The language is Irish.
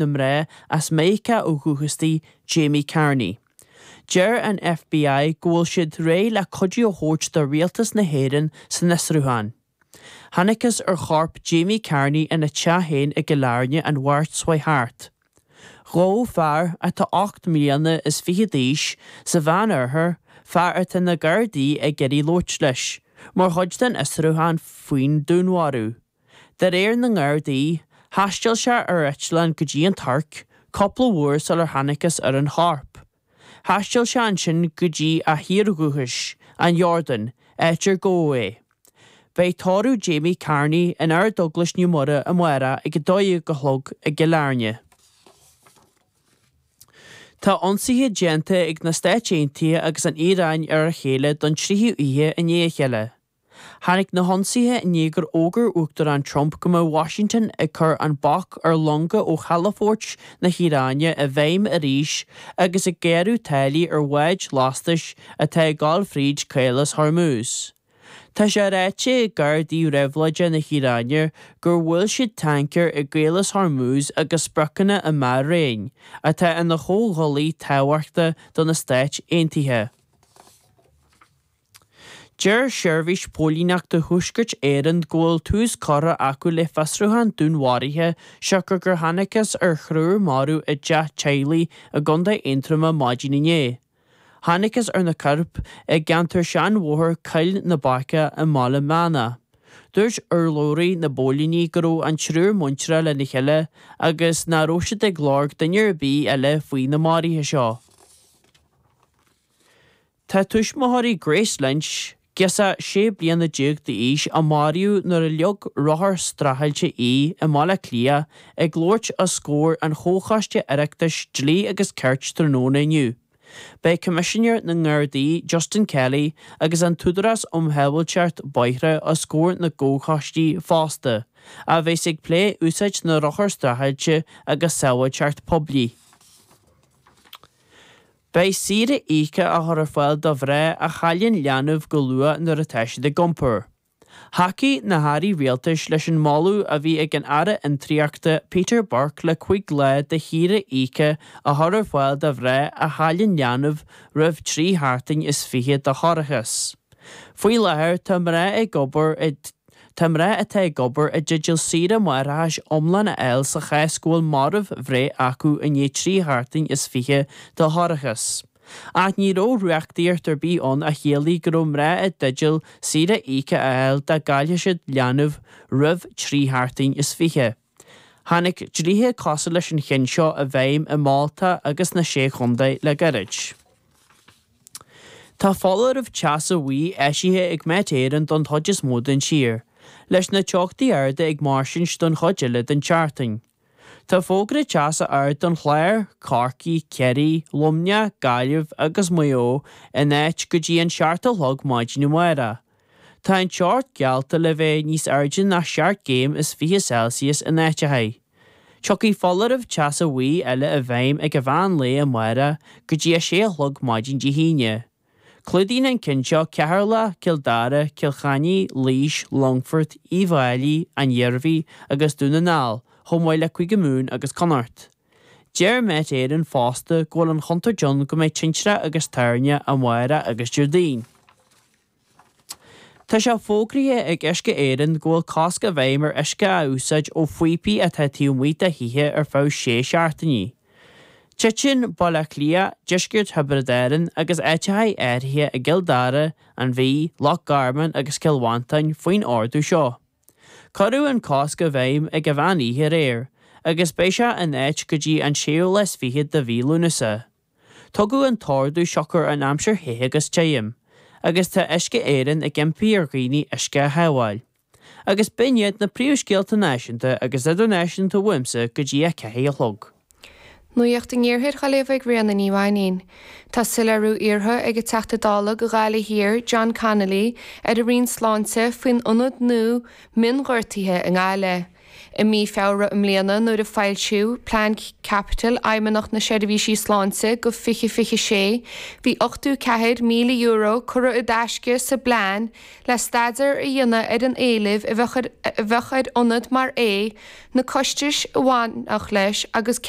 na mná arbh as Meiriceá ó dhúchas di, Jamie Carney. Deir an FBI go bhfuil siad réidh le cuidiú a thabhairt do Rialtas na hÉireann san fhiosrúchán. Thángthas ar chorp Jamie Carney ina teach féin i gCill Airne an Mháirt seo thart. Gabhadh fear, atá ocht mbliana is fiche d'aois, sa Mheán Oirthear, fear atá na Gardaí ag iarraidh labhairt leis, mar chuid den fhiosrúchán faoin dúnmharú. De réir na nGardaí, thaistil sé ar eitleán go dtí an Tuirc cúpla uair sular thángthas ar an chorp. Thaistil sé ansin go dtí a thír dhúchais, an Iordáin, áit ar gabhadh é. Beidh tórramh Jamie Carney in Ardeaglais Naomh Muire amárach ag a dó dhéag a chlog i gCill Airne. Tá ionsaithe déanta ag na Stáit Aontaithe agus an Iaráin ar a chéile don tríú oíche i ndiaidh a chéile. Tháinig na hionsaithe i ndiaidh gur fhógair Uachtarán Trump go mbeadh Washington ag cur an bac ar longa ó chalafoirt na hIaráine i bhfeidhm arís agus ag gearradh táillí ar bháid lastais atá ag dul fríd Chaolas Hormuz. Tá sé ráite ag gardaí réabhlóide na hIaráine gur bhuail siad tancaeir i gCaolas Hormuz agus spriocanna i mBahrain, atá ina chomhghuaillí tábhachtach do na Stáit Aontaithe. Deir Seirbhís Póilíneachta Thuaiscirt Éireann go bhfuil tús curtha acu le fiosrúchán dúnmharaithe siocair gur thángthas ar thriúr marbh i dteach teaghlaigh i gContae Aontroma maidin inné. Thángthas ar na coirp i gceantar seanbhóthar Choill na Baice ar an Bhaile Meánach. Dúirt urlabhraí na bpóilíní go raibh an triúr muinteartha lena chéile agus nach raibh siad ag lorg duine ar bith eile faoi na maruithe seo. Tá tuismitheoirí Grace Lynch, girseach sé bliana déag d'aois a maraíodh nuair a leag rothar streachailte í i mBaile Átha Cliath, ag labhairt os comhair an Chomhchoiste Oireachtais Dlí agus Cirt tráthnóna inniu. Beidh Coimisinéir na nGardaí Justin Kelly agus an tÚdarás um Shábháilteacht Bóithre os comhair an Chomhchoiste fosta, a bheas ag plé úsáid na rothar streachailte agus sábháilteacht poiblí. Beidh saoire íoctha á chur ar fáil do mhná a chailleann leanbh go luath nuair atá siad ag iompar. Thacaigh na hAirí Rialtais leis an moladh a bhí ag an Aire Fiontraíochta Peter Burke le cúig lá de shaoire íoctha a chur ar fáil do mhná a chailleann leanbh roimh trí sheachtain is fiche de thoircheas. Faoi láthair, tá mná ag obair i Tá mná atá ag obair i dteideal saoire máithreachais iomlán a fháil sa chás go bhfuil marbh-bhreith acu i ndiaidh trí sheachtain is fiche de thoircheas. Ach ní raibh reachtaíocht ar bith ann a chiallaigh go raibh mná i dteideal saoire íoctha a fháil dá gcaillfeadh siad leanbh roimh trí sheachtain is fiche. Tháinig dlíthe cosúil leis an chionn seo i bhfeidhm i Malta agus sna Sé Chontae le gairid. Tá foláireamh teasa buí eisithe ag Met Éireann don chuid is mó den tír, leis na teochtaí arda ag mairstint don chuid eile den tseachtain. Tá fógra teasa ard don Chlár, Corcaigh, Ciarraí, Luimneach, Gaillimh agus Maigh Eo in áit go dtí a seacht a chlog maidin amárach. Tá an teocht geallta le bheith níos airde ná seacht gcéim is fiche Celsius in áiteacha. Tiocfaidh foláireamh teasa buí eile i bhfeidhm ag meán lae amárach go dtí a sé a chlog maidin Dé hAoine. Clúdaíonn an cionn seo Ceatharlach, Cill Dara, Cill Chainnigh, Laois, Longfort, Uíbh Fháilí, an Iarmhí agus Dún na nGall, chomh maith le Cúige Mumhan agus Connacht. Deir Met Éireann fosta go bhfuil an chontúirt ann go mbeidh tintreach agus toirneach amárach agus Déardaoin. Tá sé fógraithe ag Uisce Éireann go bhfuil cosc i bhfeidhm ar uisce a úsáid ó phíopaí atá taobh amuigh de thithe ar feadh sé seachtainí. Titeann Baile Átha Cliath, Deisceart Thiobraid Árann agus áiteacha áirithe i gCill Dara, an Mhí, Loch Garman agus Cill Mhantáin faoin ordú seo. Cuireadh an cosc i bhfeidhm ag meán oíche aréir agus beidh sé in áit go dtí an séú lá is fiche de mhí Lúnasa. Tugadh an t-ordú siocair an aimsir the agus tirim, agus tá Uisce Éireann ag impí ar dhaoine uisce a shábháil. Agus b'in iad na príomhscéalta náisiúnta agus idirnáisiúnta uaimse go dtí a ceathair a chlog. Nuacht an Iarthair dhá léamh ag Ríona Ní Mhainín. Tá soiléiriú iarrtha ag an Teachta Dála do Ghaillimh Thiar, John Connolly, ar an Roinn Sláinte faoin ionad nua mionghortaithe i nGaillimh. I mí Feabhra i mbliana, nuair a foilsíodh Plean Caipitil Fheidhmeannach na Seirbhísí Sláinte go 2026, bhí €84,000 curtha i dtaisce sa bplean le staidéar a dhéanamh ar an éileamh a bheadh ar ionad mar é, na costais a bhainfeadh leis agus cén